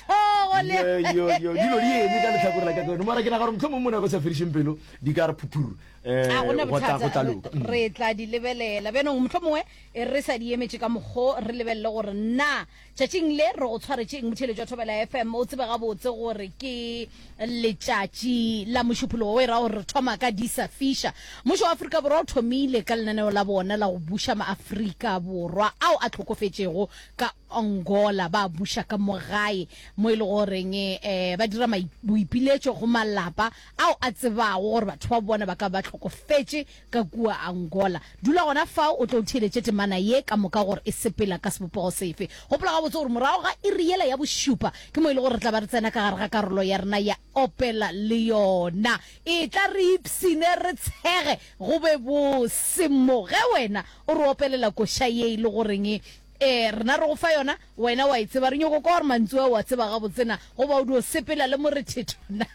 thogo le yoyoyo dilo di eme ka letlhakore la kakano mara ke naga gore motlho mongwe mo ne go sa fedišeng pelo di ka re phuthuru ga gona um go tla bothata loka Mm. re tla di lebelela bjanong motlho mongwe e re sa di emetše ka mokgo re lebelele gore na tšatšing le re go tshwaretšeng motheletšo wa thobela fm o tsebe gabotse gore ke letšatši la mošuphologo o e ra gore re thoma ka disa fisha mmušo wa aforika borwa o thomile ka lenaneo la bona la go buša maaforika borwa ao a tlhokofetšego ka Angola ba buša ka mo gae mo e le goreng eh, ba dira boipiletšo go malapa ao a tsebago gore batho ba bona ba ka ba hlokofetše ka kua Angola. Dula gona fao o tlo o theeletše temana ye ka moka gore e sepela ka sebopego sefe. Gopola gabotse gore morago ga iri yela ya bošupa ke mo e le gore re tla ba re tsena ka gare ga karolo ya rena ya opela le yona. E tla re ipsine re tshege go be bose mo ge wena o re opelela koša ye e le goreng Ee, rena re go fa yona, wena wa e tseba. Re nyoko kwa gore mantsu ao wa tseba gabotse na, goba o dio sepela le morethetho na.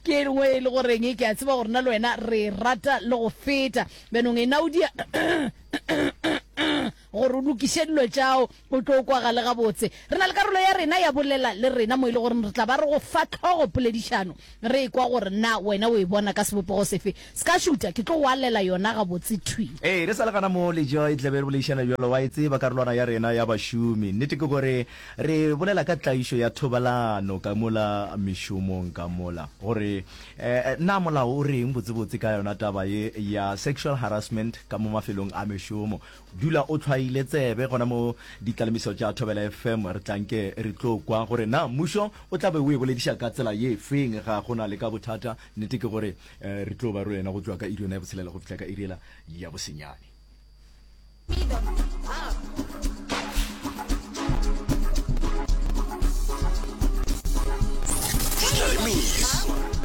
Ke e lngwe e le goreng ke a tseba gore na le wena re e rata le go feta. Bjanong ena o dia gore o lokiše dilo tšao, o tlo kwagale gabotse. Re na le karolo ya rena ya Bolela le Rena mo e le goreng re tla ba re go fa tlhogopoledišano, re ekwa gore na wena o e bona ka sebopego sefe. Se ka šuta, ke tlo go alela yona gabotse thwi. Ee, re sa le gana moo, le Joy, tla be re boledišana bjalo. Wa e tseba karolwana ya rena ya bašomi. Nnete ke gore re bolela ka tlaišo ya thobalano ka mola mešomong ka mola. Gore um na molao o re'ng botsebotse ka yona taba ye ya sexual harassment ka mo mafelong a mešomo. Dula o tlhwaile tsebe gona mo Ditlalemiso tša Thobela FM. Re tla nke re tlo kwa gore na mmušo o tla be o e bolediša ka tsela ye feng. Ga go na le ka bothata. Nnete ke gore Re tlo ba roena go tšwa ka iri yona ya botshelela go fihla ka iri ela ya bosenyane.